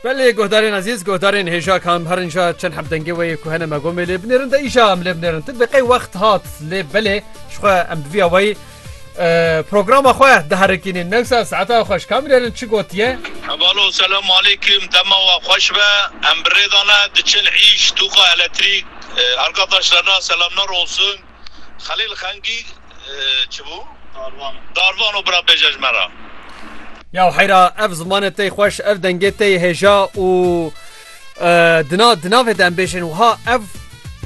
Belê guhdarên ezîz, guhdarên hêja kam herin ja çend hemdengê we yê ku hene me gomê lê binêrin de îja em lê binêrin. Ti bi qey wext hat lê belê ji xwe em bi vî awayî programa xwe diherikînin. Newsa saeta xweş kamînerin çi gotiye? Hevalo selam aleykim dema we xweş be em bi rê de ne diçin îş tûqa eletrîk. Arkadaşlarına selamlar olsun. Xelîl Xengî çi bû? Darvan û bira bêje ji me re. Ya heyra ev zimanê tey xweş ev dengê tey hêja û di na di navê de em bêjin wiha ev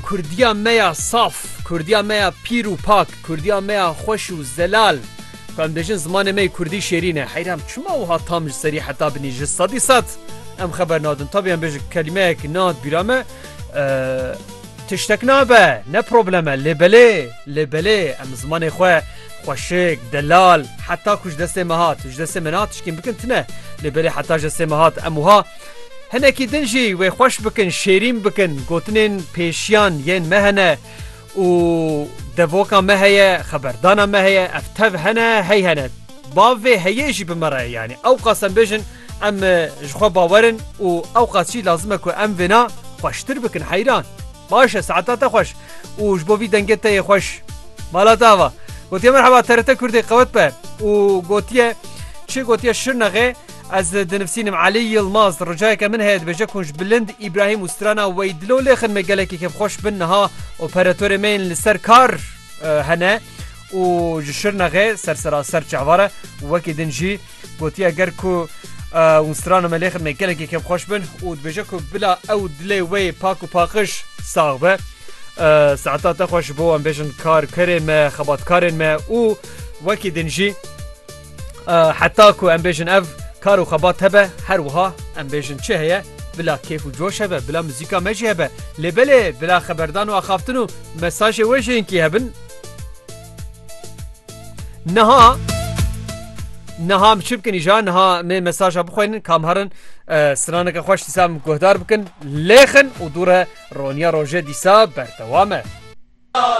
Kurdiya me ya saf, Kurdiya me ya pîr û pak, Kurdiya me ya xweş û zelal ku em dêjin zimanê me yê Kurdî şêrîn e. Heyra em çima wiha tam ji serî heta binî ji sedî sed em xeber nadin. Tabî em bêjin kelîmeyek nehad bîra me. Tiştek nabe, ne problem e, lê belê, lê belê em zimanê xwe xweşik, delal, heta ku ji destê me hat, ji destê min hat tişkên bikin tune, lê belê heta ji destê me hat em wiha hinekî din jî wê xweş bikin, şêrîn bikin, gotinên pêşiyan yên me hene û devoka me heye, xeberdana me heye, ev tev hene, hey hene. Bavê heyê jî bi me re ye yanî. Ewqas em bêjin Em ji xwe bawer in û ewqas jî lazim e ku em vêna xweştir bikin heyran. Baş e saeta te xweş û ji bo vî dengê te yê xweş. Mala te ava. Gotiye merheba TRT Kurdê qewet be û gotiye çi gotiye Şirnexê ez dinivsînim Elî Yilmaz ricayeke min heye dibêje kunj bilind Îbrahîm û strana wey dilo lêxin me gelekî kêfxweş bin niha operatörê me yên li ser kar hene û ji Şirnexê sersera ser çehvare wekî din jî Gotiye ger ku Unstrano me lê xidmê gelekî kêm xweş bin û dibêje ku bila ew dilê wê pak û paqiş sax be. Saeta te xweş bo em bêjin kar kerê me xebatkarên me û wekî din jî heta ku em bêjin ev kar û xebat hebe her wiha em bêjin çi heye bila kêf û coş hebe bila muzîka me jî hebe lê belê bila xeberdan û axaftin û mesajê wê jênkî hebin Niha Niha çi bikin îja niha mê mesaja bixweynin kam herin straneke xweş dîsa min guhdar bikin lêxin û dûre roniya roje dîsa berdewame.